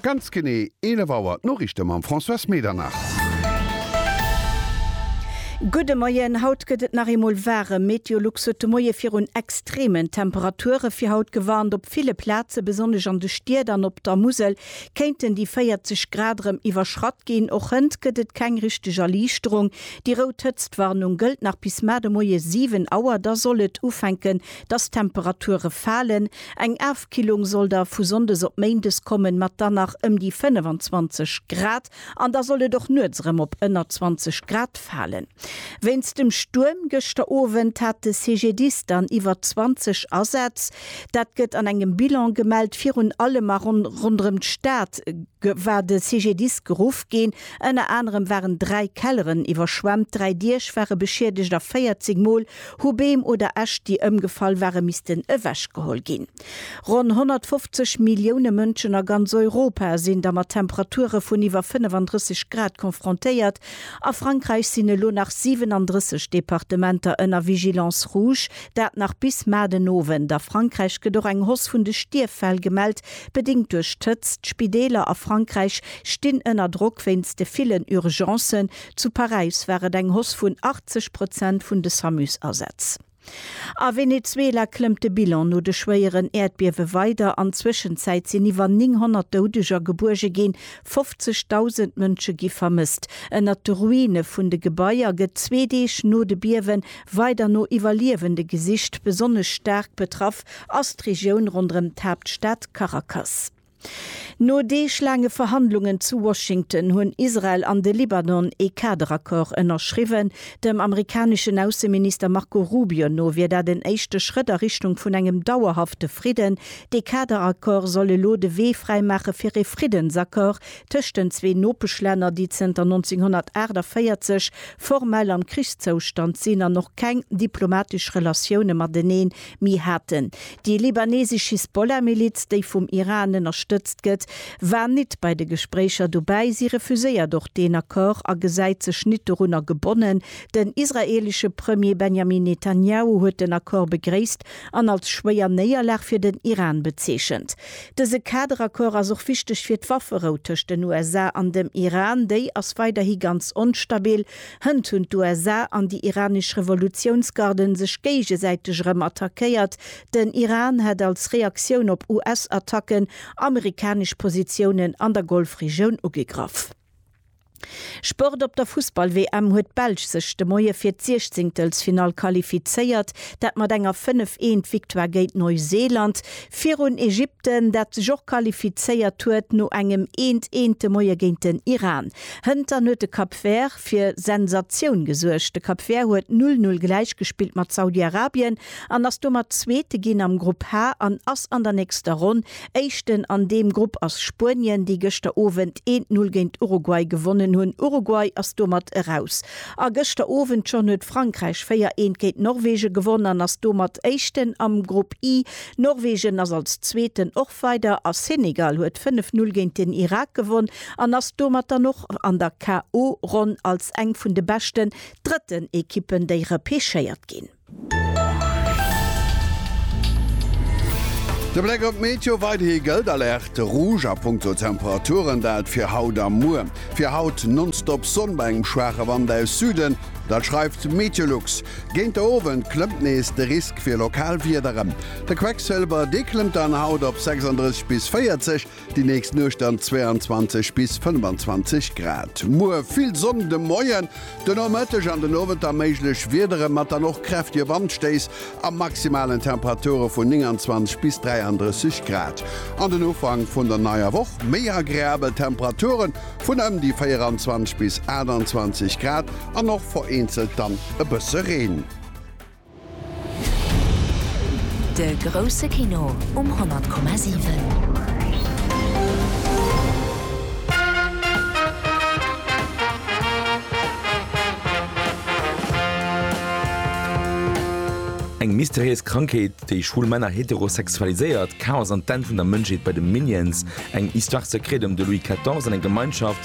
Ganz genee 11 Auer, d'Noriichte mam Françoise Medernach. Gudde Moien, Haut gëtt et nach eemol waarem. Meteolux huet de Moie virun extremen Temperature fir haut gewarnt. Op ville Plaze, besonnesch an de Stied an op der Musel, kéinten déi 40 Grad erëm iwwerschratt ginn. Och hënt gëtt et keng richteg Erliichterung. Déi rout Hëtztwarnung gëllt nach bis mar de Moie 7 Auer, da soll et ufänken Dass d'Temperature falen, eng Afkillung soll da vu Sonndes op Méindes kommen, mat dann nach ëm déi 25 Grad, an da soll et och nuets erëm op ënner 20 Grad falen. Wéinst dem Stuerm gëschter Owend hat de CGDIS dann iwwer 20 Asätz. Dat gëtt an engem Bilan gemellt. Virun allem a ronderëm d'Stad war de CGDIS geruff ginn. Ënner anerem waren dräi Kelleren iwwerschwemmt, dräi Diech ware beschiedegt a 40 Mol Hu Beem oder Äscht, déi ëmgefall ware missten ewechgeholl ginn. Ronn 150 Millioune Mënschen a ganz Europa sinn da mat Temperature vun iwwer 35 Grad confrontéiert. A Frankräich sinn elo nach 37 Departementer ënner Vigilance rouge, dat nach bis mar den Owend. A Frankräich gëtt och eng Hoss vun de Stierffäll gemellt, bedéngt duerch d'Hëtzt. D'Spideeler a Frankräich stinn ënner Drock wéinst de villen Urgencen. Zu Paräis war et eng Hausse vun 80 Prozent vun de Samus-Asätz. A Venezuela klëmmt de Bilan no de schwéieren Äerdbiewe weider. An Zwëschenzäit sinn iwwer 900 Doudeger gebuerge ginn. 50.000 Mënsche gi vermësst. Ënnert de Ruine vun de Gebaier gëtt zwee Deeg no de Biewe weider no Iwwerliewende gesicht. Besonnesch staark betraff ass d'Regioun ronderëm d'Haaptstad Caracas. No deeglaange Verhandlungen zu Washington hunn Israel an de Libanon ee Kaderaccord ënnerschriwwen. Dem amerikaneschen Ausseminister Marco Rubio no wier dat en éischte Schrëtt a Richtung vun engem dauerhafte Fridden. Dee Kaderaccord soll elo de Wee fräimaache fir ee Friddensaccord tëscht den zwee Nopeschlänner, déi zënter 1948 formell am Krichszoustand sinn an och keng diplomatesch Relatioune matenee Mir haten, déi libanesesch Hisbollah-Miliz, déi vum Iran ënnerstëtzt gëtt, war nit bei de Gespréicher dobäi. Si refuséiert och deen Accord a gesäit sech nit dorunner gebonnen. Den israelesche Premier Benjamin Netanjahu huet den Accord begréisst an als schwéier Néierlag fir den Iran bezeechent. Dëse Kaderaccord ass och wichteg fir d'Wafferou tëscht den USA an dem Iran. Déi ass weiderhi ganz onstabil. Hënt hunn d'USA an déi iranesch Revolutiounsgarden sech géigesäiteg erëm attackéiert. Den Iran hätt als Reaktioun op US-Attacken amerikanesch Positiounen an der Golfregioun ugegraff. Sport Op der Fussball-WM huet d'Belsch sech de Moie fir d'Siechzéngtelsfinall qualifizéiert, dat mat enger 5, Eent Victoire géint Neuseeland virun Ägypten, dat sech och qualifizéiert huet no engem Eent, Eent de Moie géint den Iran. Hëntern huet de Cap Vert fir Sensatioun gesuergt. De Cap Vert huet 'null null' gläichgespillt mat Saudi-Arabien an ass domat Zweete ginn am Grupp H an ass an der nächster Ronn Éischten. An deem Grupp ass Spuenien, déi gëschter Owend een d'Null géint Uruguay gewonnen hunn. Uruguay ass domat eraus. A gëschter Owend schonn huet Frankräich véier eent géint Norwegen gewonn an ass domat Éischten am Grupp I. Norwegen ass als Zweeten och weider a Senegal huet fënnef null géint den Irak gewonn. an ass domat dann och an der KO Ronn als eng vun de beschten drëtten Ekippen déi repechéiert ginn. De Bléck op d'Meteo, Weiderhi gëllt Alerte Rouge a Punkto Temperaturen, dat fir haut a muer. Fir haut nonstop Sonn bei engem schwaache Wand aus Süden, dat schreift Meteolux. Géint de Owend klëmmt nees de Risk fir lokal Wiederen. De Quecksëlwer, dee klëmmt dann haut op 36 bis 40. Déi nächst Nuecht dann 22 bis 25 Grad. Muer vill Sonn de Moien, de Nomëtteg an den Owend da méiglech Wiedere mat dann och kräftige Wandstéiss a maximalen Temperature vun 29 bis 33 Grad. An den Ufank vun der neier Woch méi agreabel Temperature vun ëm déi 24 bis 28 Grad an och vereenzelt dann e bësse Reen. De grousse Kino um 100,7. Eng mysteriéis Krankheet, déi schwul Männer heterosexualiséiert, Chaos an d'Enn vun der Mënschheet bei de Minions, eng Histoire secrète ëm de Louis 14 an eng Gemeinschaft,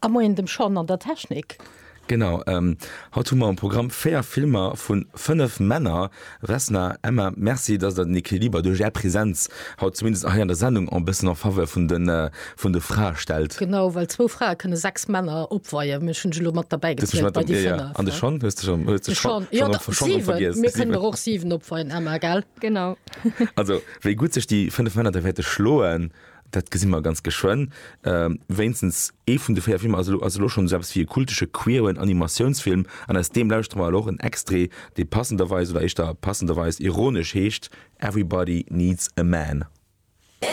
A Moien dem Sean an der Technik. Genau, haut hu mer am Programm 4 Filmer vu 5 Männer. Vesna, Emma, merci, dass der den Equiliber duerch är Präsenz haut zumindest hei an der Sendung en bëssen en faveur vun de Frae stellt. Genau, well zwou Frae kënne 6 Männer opweien. Ech hunn se lo mat derbäi gezielt bei déi 5. An de Sean? Hues de schonn de Sean och vergiess? Mir kënnen der och 7 opweien, Emma, gell? Genau. Also, wéi gutt sech déi 5 Männer da wäerte schloen. dat gesi mer ganz geschwënn, ähm, wéinstens ee vun de véier Filmer ass elo, ass elo schonn esou eppes wéi e kultesche queeren Animatiounsfilm an aus deem lauschtere mer elo och en Extrait, dee passenderweis, oder éischter passenderweis ironesch heescht Everybody Needs a Man.